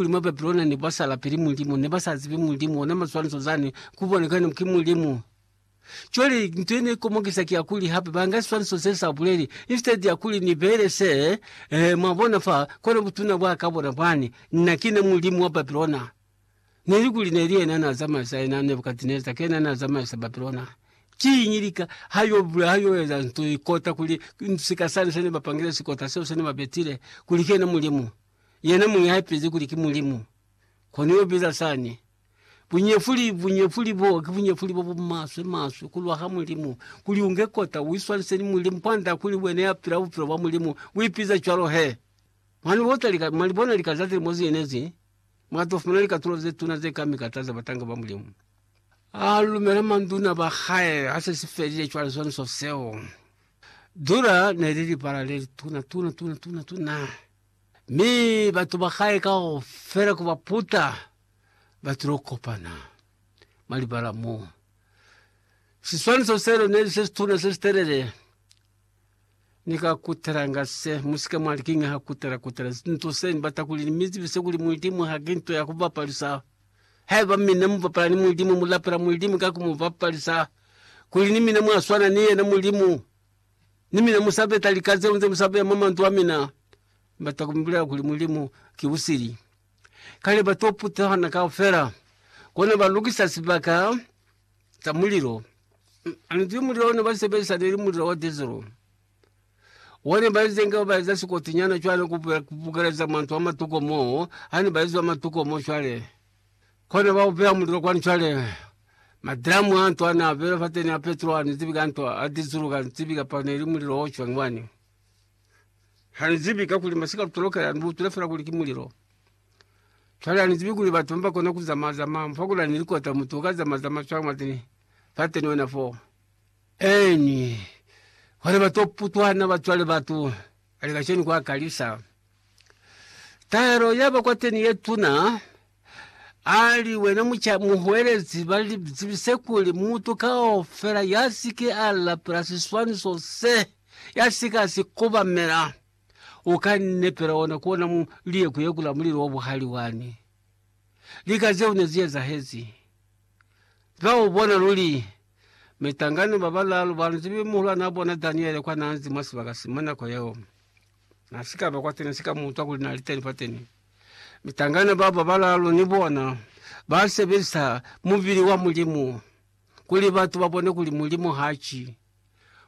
Kuli mwa Babilona ne kwa sala pili Mulimu, ne ba sa zibi Mulimu, ona maswaniso zani ku bona kuli ki Mulimu. Cwale nto ye ne komokisa ki ya kuli hape ba nga siswaniso se sa buleli, instead ya kuli ni beele se, eh, mwa bona fa, kona butuna bwa ka bona bwani, Nna ki na Mulimu wa Babilona. Neli kuli neli yena na zamaisa yena Nebukadneza, ki yena na zamaisa Babilona. Kiñi lika ha yo bula, ha yo eza nto ye kota kuli sika sani se ne ba pangile, sikota seo se ne ba betile, kuli ki yena Mulimu? yena muñi ha ipezi kuli ki Mulimu, kono yo biza sani. Bunyefuli, bunyefuli bo, ki bunyefuli bo bu maswe, maswe, ku lwa ha Mulimu, kuli unge kota, uiswanise ni Mulimu, kwanda kuli wena ya pila bupilo bwa Mulimu, u ipize cwalo he. Mwa ni bota lika, mwa li bona lika za zilimo ze ne zi, mwa to fumana likatulo ze tuna ze kami ka taza batanga ba Mulimu. A lumela manduna ba hae, ha se si felile cwale swaniso seo. Dura ne li libala le lituna, tuna, tuna, tuna, tuna. Mi batu ba hae kaufela ku ba puta ba tilo kopana mwa libala mo. Siswaniso seo neli se situna se sitelele. Ni ka kutelanga se, musike mwali, Kiñi ha kutela kutela nto se? Ni bata kuli ni mi zibise kuli Mulidimu ha ki nto ya ku bapalisa. Haiba mina mu bapala ni Mulidimu, mu lapela Mulidimu ka ku mu bapalisa, kuli ni mina mwa swana ni yena Mulimu. Ni mina musa peta lika zeo nze musa beya mwa manzwi a mina. Bata ku mi bulela kuli Mulimu ki busili. Kale ba to putana kaufela, kona ba lukisa sibaka sa mulilo. Anzwi mulilo ona ba sebelisa ne li mulilo wa diesel. One ba ize nga ba eza sikoti nyana cwale ku bukeleza manzwi a matuko moo, hane ba izwa matuko moo cwale. Kona ba ubeya mulilo kwa ntwa le. Madramu a ntwa na bela fa teni a petrol ni zibi ka ntwa a dizulu ka zibi ka pa ne li mulilo o chwang wani. Ha ni zibi ka kuli masika lutolokela ni butule fela kuli ki mulilo. Chwale ha ni zibi kuli batu mba kona ku zama zama mfa kula ni likota mutu ka zama zama chwang mwa teni fa teni wena fo. Eni. Kona ba to putwana ba chwale batu. Kale kacenu kwa kalisa tahelo ya ba kwateni ye tuna. Ali wena muca muhwelezi ba zibise kuli mutu kaufela ya si ke a lapela siswaniso se, ya si ka si kobamela, u ka nepela ona ku ona mu liye ku yekula mulilo wa buhali wani. Lika zeo ne zi ezahezi. Za u bona luli, mitangana ba balaalu ba nzi be muhulwanaa bona Daniele kwa naa nzi mwa sibaka si mwa nako yeo. Na si ka ba kwateni, na si ka mu utwa kuli na li teni fateni. Mitangana bao ba balaalu ni bona ba sebelisa mubili wa Mulimu kuli batu ba bone kuli Mulimu ha ki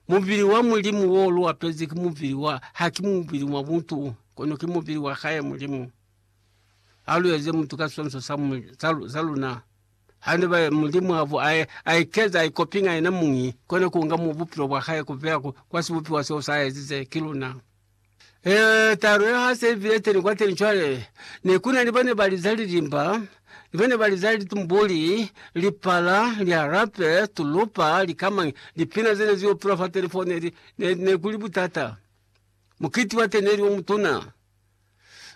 mubili wa Mulimu wo lu apezi, ki mubili wa, ha ki mubili wa mutu, kono ki mubili wa hae Mulimu. Halu eze mutu ka sonso sa, mu, sa, sa luna. Hande ba, Mulimu abu, a, a ikeza, a ikopinga yena mungi, kona kunga mu bupilo bwa hae kubeya ku, kwa sibupiwa seo sa ezize, ki luna. E, talo ya ha se ibile teni kwa teni cwale. Ne kuna ni bane ba liza lilimba, ni bane ba liza litumbuli, lipala, liharape, tulupa, likamangi, lipina zene zi opilwa fa teni fo, ne, ne, ne kuli butata. Mukiti wa teni neli o mutuna.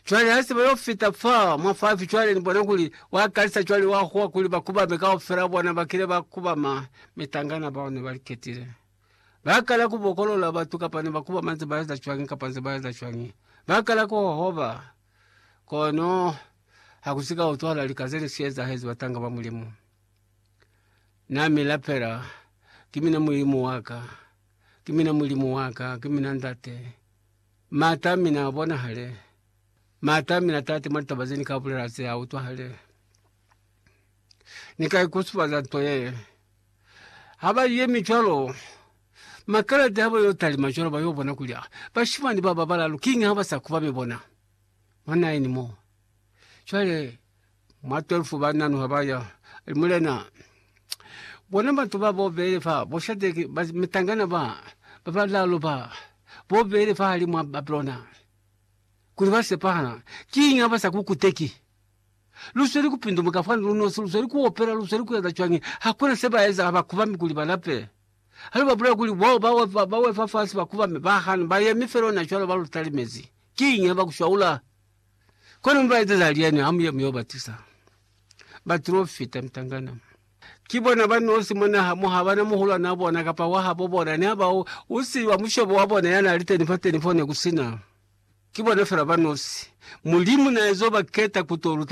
Cwale hase ba yo fita fa mwa fafi, cwale ni bona kuli wa kalisa cwale wa huwa kuli ba kubame kaufela bona ba kile ba kubama mitangana bao ne ba li ketile. Ba kala ku bokolola batu kapa ne ba kubama nze ba eza cwañi kapa nze ba eza cwañi. Ba kala ku hohoba. Kono ha ku si ka utwahala lika ze ne si ezahezi batanga ba Mulimu. Na mi lapela, Ki mina Mulimu wa ka, ki mina Mulimu wa ka, ki mina Ndate. Maata a mina a bonahale. Maata a mina a taate mwa litaba ze ni ka bulela ze a utwahale. Ni ka ikusufaza nto yee. Ha ba yemi cwalo, makelede ha ba yo talima cwalo, ba yo bona kuli, Ah, bashimani ba ba balaalu, kiñi ha ba sa kubami bona mwa naeni mo? Cwale Mwa 12 ba nanuha ba ya, ali, Mulena, bona batu ba bo beli fa, bo Shadeki, ba mitangana ba, ba balaalu ba, bo beli fahali mwa Babilona, kuli ba sepahala. Kiñi ha ba sa ku kuteki? Lu sweli ku pindumuka fani lu nosi, lu sweli ku opela, lu sweli ku eza cwañi? Hakuna se ba eza, ha ba kubami kuli ba lape. Ha lu ba bulela kuli bo ba wefa, ba wefa fasi, ba kubami, ba hana, ba yemi fel'o na cwalo, ba lu talimezi. Kiñi ha ba ku swaula? Kono mi baezeza lyani ha muya mi yo batusa? Baprofita, mitangana. Ki bona ba nosi mwa naha mo, ha bana muhulwanaa bona kapa wa habo bona, ne ha ba u, u si wa mushobo wa bona ya na li teni fateni fo ne ku si na. Ki bona fela ba nosi. Mulimu na ezo ba keta ku to luta